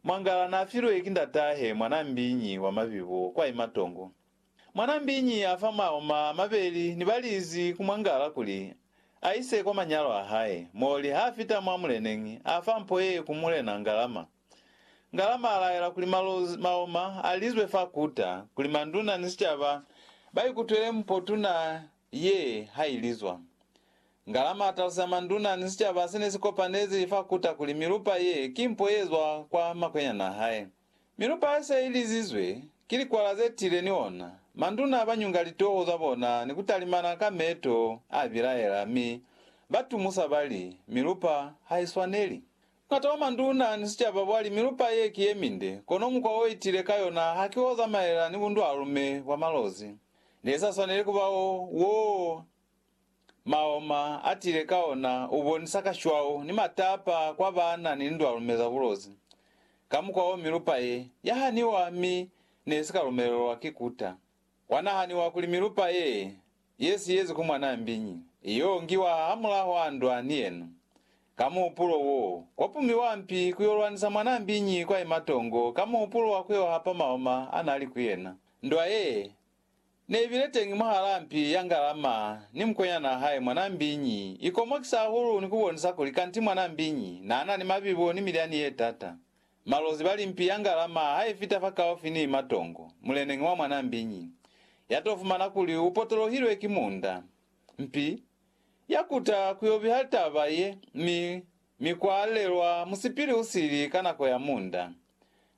Mwangala n'a filwe ki ndat'ahe mwan'a mbiñi wa mabibo kwa i matongo. Mwan'a mbiñi a fa maoma a mabeli ni balizi ku mwangala kuli a ise kwa manyalo a hae, moli ha fita mwa muleneñi, a fa mpo ye ku mulena Ngalama. Ngalama a laela kuli malozi, maoma, a lizwe fa kuta, kuli manduna ni sicaba ba ikutwele mpo tuna Ye ha i li zwañi? Ngalama a talusa manduna ni sicaba se ne si kopanezi fa kuta kuli milupa ye ki mpo ye zwa kwa makwenyana a hae. Milupa ye se i lizizwe ki likwala ze tiile ni ona, manduna ba nyunga litoho za bona ni ku talimana ka meeto a bilaela mi ba tumusa ba li, Milupa ha i swaneli. Buñata bwa manduna ni sicaba bwa li milupa ye ki ye minde, kono mukwa o i tiile ka yona ha ki o zamaela ni bundwalume bwa malozi. Ne sa swaneli ku ba o, wo Maoma a tile ka ona, u bonisa kashwau ni matapa kwa baana ni lindwalume za bulozi. Ka mukwa o milupa ye, ya haniwa mi ne si ka lumelelwa ki kuta. Kwa nahaniwa kuli milupa ye, ye si yezi ku mwanaa mbiñi, i yo ngiwa hamulaho a ndwa ni yena. Ka muhupulo wo, kwa pumiwa mpi ku yo lwanisa mwanaa mbiñi kwa imatongo ka muhupulo wa ku yo hapa maoma a na li ku yena. Ndwa ye ne bile teñi mwahalaa mpi ya Ngalama ni mukwenyana hae mwanaa mbiñi i komokisa hahulu ni ku bonisa kuli kanti mwanaa mbiñi naa na ni mabibo ni milyani ye tata. Malozi bali mpi ya Ngalama ha i fita fakaufi ni matongo, muleneñi wa mwanaa mbiñi ya to fumana kuli u potolohilwe ki munda. Mpi ya kuta ku yo biha litaba ye mi Mi kwa lelwa musipili u sili ka nako ya munda.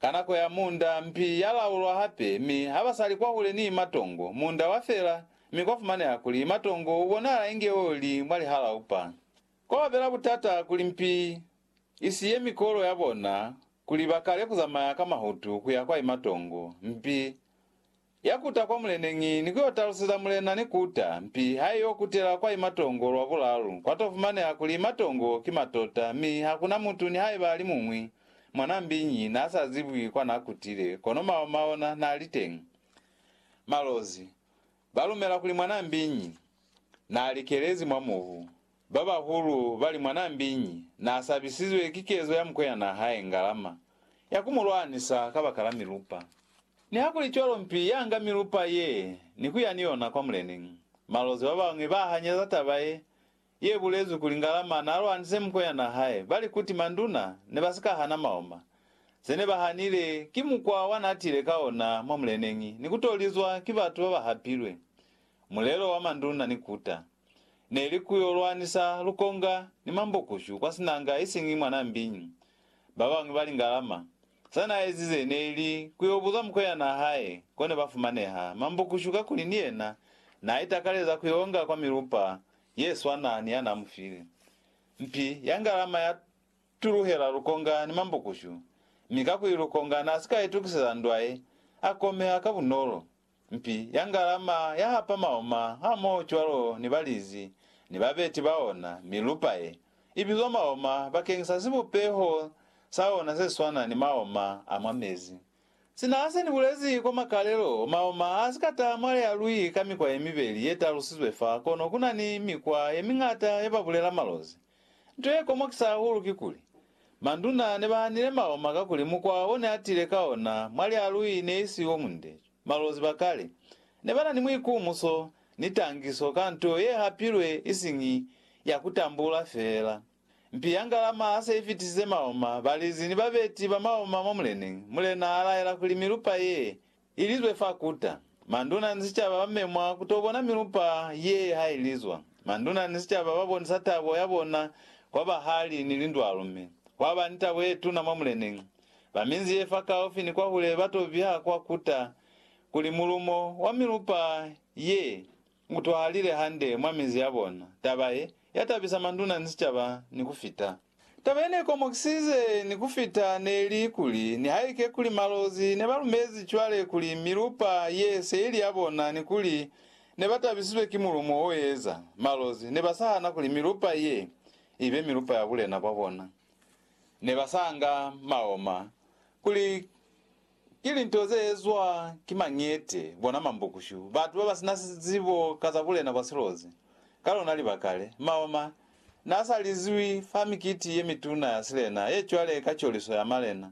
Ka nako ya munda, mpi ya laulwa hape, mi haba sa li kwahule ni matongo, munda wa fela, mi kwa fumaneha kuli matongo u bonahala inge o li mwa lihalaupa. Kwa ba bela butata kuli mpi i siye mikolo ya bona kuli ba kale ku zamaya ka mahutu ku ya kwa imatongo, mpi Ya kuta kwa muleneñi ni ku yo taluseza mulena ni kuta, mpi ha i yo kutela kwa imatongo lwa bulalu, kwa to fumaneha kuli imatongo ki matota, mi ha ku na mutu nihaiba a li muñwi, mwan'a mbiñi, n'a sa zibwi kwa n'a kutile, kono maoma ona n'a li teñi. Malozi, ba lumela kuli mwan'a mbiñi, n'a likelezi mwa mubu. Babahulu bali mwanambiñi naasabisizwe ki kezo ya mukweyana hae Ngalama ya kumulwanisa kabakala milupa. Nihakulicwalo mpi yaanga milupa ye ni kuya ni yona kwa muleni. Malozi babañwi bahanyeza taba ye yebulezwi kuli Ngalama naalwanise mukweyana hae bali kuti manduna nebasika hana maoma, zenebahanile ki mukwa wanaatile ka ona mwa muleneñi ni kutolizwa ki batu babahapilwe. Mulelo wa manduna ni kuta. Neli ku yo lwanisa lukonga ni mambokushu kwa sinanga isiñi mwa Nambi. Babañwi bali Ngalama, sa na ezize neli ku yo buza mukwenyana hae ko ne ba fumaneha mambokushu kakuli ni yena na itakaleza ku yo nga kwa milupa ye swana ni ya na mu file. Mpi ya Ngalama ya tuluhela lukonga ni mambokushu, mi kakuli lukonga na si ka itukiseza ndwa ye, a komeha ka bunolo. Mpi ya ngalama ya hapa maoma hamoho cwalo ni balizi ni babeti ba ona, mi lupa ye, i bizwa maoma bakeng sa sibupeho sa ona se swana ni maoma a mwa mezi. Sina se ni bulezi kwa makalelo, maoma a si ka taha mwa lea lui ka mikwa ye mibeli ye talusizwe fa, kono ku na ni mikwa ye miñata ye ba bulela malozi. Nto ye komokisa hahulu kikuli, manduna ne ba hanile maloma kakuli mukwa o ne a tile ka ona mwa lialui ne i si o munde. Malozi ba kale ne ba na ni muikumuso ni tangiso ka nto ye hapilwe isiñi ya ku tambula feela. Mpi ya ngalama ha se i fitisize maloma, balizi ni babeti ba maloma mwa muleneñi, mulena a laela kuli milupa ye Ilizwe fa kuta. Manduna ni sicaba ba memwa ku to bona milupa ye ha ilizwa. Manduna ni sicaba ba bonisa tabo ya bona kwa bahali ni lindwalu mi kwa ba ni tabo ye tuna mwa Muleneñi. Ba minzi ye fa kaufi ni kwahule ba to biha kwa kuta kuli mulumo wa milupa ye Mutwalile hande mwa minzi yabona. Taba ye, yatabisa manduna ni sicaba ni kufita. Taba yenekomokisize ni kufita neli kuli, nihaike kuli Malozi nebalumezi cwale kuli milupa ye se ili yabona ni kuli nebatabisizwe ki mulumo oeza, Malozi nebasahana kuli milupa ye ibe milupa ya bulena bwabona. Nebasanga maoma kuli Ki linto ze ezwa ki mañete, bona mambukushu, batu ba ba si na zibo ka za bulena bwa silozi. Ka lona libaka le, Maoma n'a sa lizwi fa mikiti ye mituna ya silena ye cwale ka coliso ya malena.